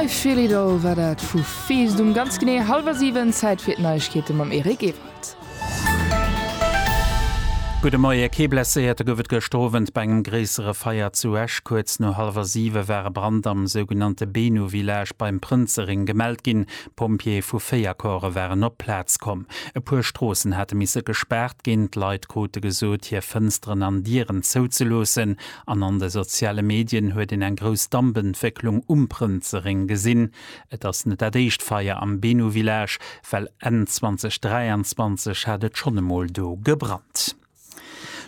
I Feel It All war dat vu Feest um ganz genee hallwer 7. Zäit fir d'Neiegkeete mam Eric Ewald. Gudde Moie, Kee Blesséierte gouf et gëschter Owend bei engem gréissere Feier zu Esch. Kuerz no hallwer 7 war e Brand am sougenannte Benu Village beim Prënzerring gemellt ginn. D'Pompjeeë vu 4 Corpse waren op d'Plaz komm. E puer Stroossen hate misse gespaart ginn. D'Leit krute gesot, hir Fënsteren an Dieren zouzeloossen. An an de soziale Medien huet een eng grouss Dampentwécklung um Prënzereng gesinn. Et ass net dat éischt Feier am Benu Village, well Enn 2023 hat et schonn emol do gebrannt.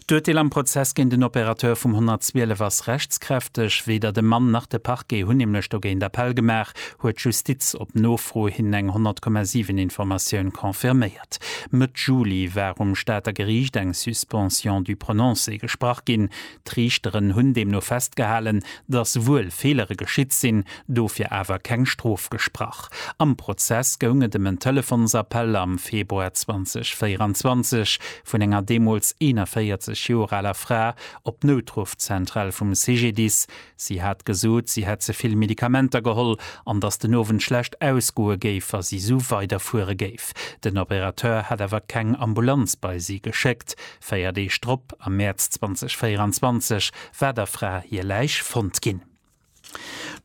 D'Urteel am Prozess géint den Opérateur vum 112 ass rechtskräfteg. Weder de Mann nach de Parquet hunn nämlech dogéint Appell gemaach, huet d'Justiz op Nofro hin eng 100,7 Informatioun confirméiert. Stad. Mëtt Juli war um Stater Geriicht eng Suspension du prononcé gesprach ginn. D'Riichteren hunn deemno festgehalen, datt wuel Feelere geschitt sinn, dofir awer keng Strof gesprach. Am Prozess goung et ëm en Telefonsappell am Februar 2024 vun enger deemools 41 Joer aler Fra op d'Noutruffzentral vum CGDIS, Si hat gesot, si hätt ze vill Medikamenter geholl an datt den Owend schlecht ausgoe géif, wa si esou weiderfuere géif. Den Opérateur hätt awer keng Ambulanz bei si geschéckt. Véier Deeg drop, am Mäerz 2024, war der Fra hir Läich fonnt ginn.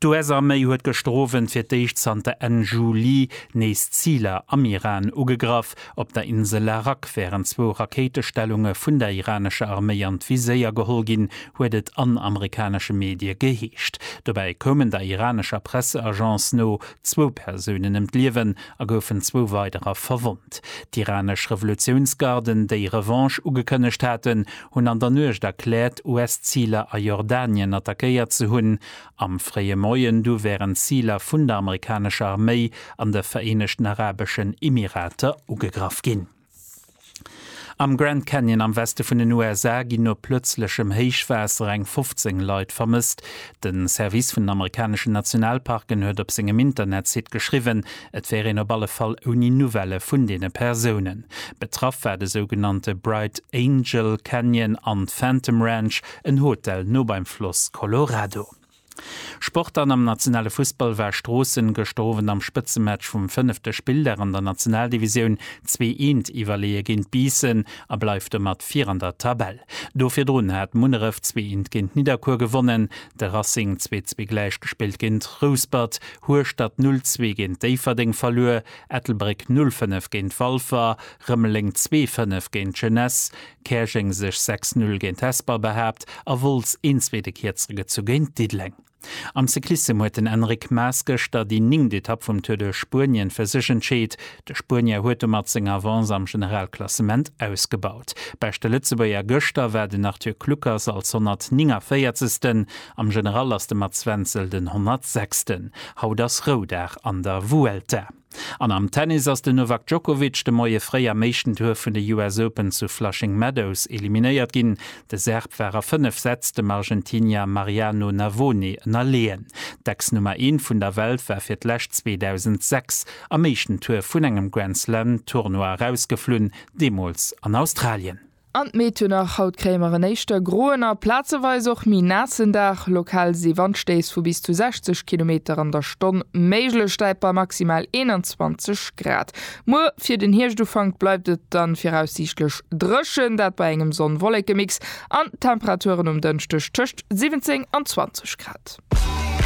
D'US-Arméi huet gëschter Owend fir d'éischt zanter Enn Juli nees Ziler am Iran ugegraff. Nacht op der Insel Arak wären zwou Rakéitestellunge vun der iranescher Arméi an d'Viséier geholl ginn, huet et an amerikanesche Medie geheescht. Dobäi koumen der iranescher Presseagence no zwou Persounen ëm d'Liewen a goufen zwou weiderer verwonnt. D'iranesch Revolutiounsgarden, déi Revanche ugekënnegt haten, hunn an der Nuecht erkläert, US-Ziler a Jordanien attackéiert ze hunn Am fréie Moien du wären d'Ziler vun der amerikanescher Arméi an de Vereenegten Arabeschen Emirater ugegraff ginn. Am Grand Canyon am Weste vun den USA ginn no plëtzlechem Héichwaasser eng 15 Leit vermësst. De Service vun den amerikaneschen Nationalparken huet op sengem Internetsite geschriwwen, et wär een op alle Fall ouni Nouvellë vun deene Persounen. Betraff war de sougenannte Bright Angel Canyon an d'Phantom Ranch, En Hotel no beim Floss Colorado. Sport An am nationale Fussball war Stroossen gëschter Owend am Spëtzematch vum fënnefte Spilldag an der Nationaldivisioun zwee Eent iwwerleeë géint Biissen a bleift domat vir an der Tabell. Do virdrun hat Munneref zwee Eent géint Nidderkuer gewonnen, de Racing zwee zwee gläich gespillt géint Rouspert, Hueschtert null zwee géint Déifferdeng verluer, Ettelbréck null fënnef géint Walfer, Rëmeleng zwee fënnef géint Jeunesse, Käerjeng sech 6 Null géint Hesper behaapt a Wolz een zweete Kierzere gezu géint Diddeleng. Am Cyclissem huet den Enric Maes gëschter déi néngt Etapp vum Tour de Spuenien fir sech entscheet. De Spuenier huet domat seng Avance am Generalklassement ausgebaut. Beschte Lëtzebuerger gëschter war den Arthur Kluckers als 149. Am General ass de Mats Wenzel den 106. Haut ass Roudag an der Vuelta. An am Tennis ass den Novak Djokovic de Moie fréi am éischten Tour vun de US Open zu Flushing Meadows eliminéiert ginn. De Serb war a 5 Sätz dem Argentinier Mariano Navone ënnerleeën. D'Ex-Nummer Eent vun der Welt war fir d'lescht 2006 am éischten Tour vun engem Grand-Slam-Tournoi erausgeflunn, deemools an Australien. An d'Méiternach, haut kréie mer en éischter groen a plazeweis och méi naassen Dag. Lokal si Wandstéiss vu bis zu 60 Kilometer an der Stonn méiglech, däit bei maximal 21 Grad. Muer fir den Hierscht-Ufank bleift et dann viraussiichtlech dréchen, dat bei engem Sonn-Wolleke-Mix an Temperaturen um Dënschdeg tëscht 17 an 20 Grad.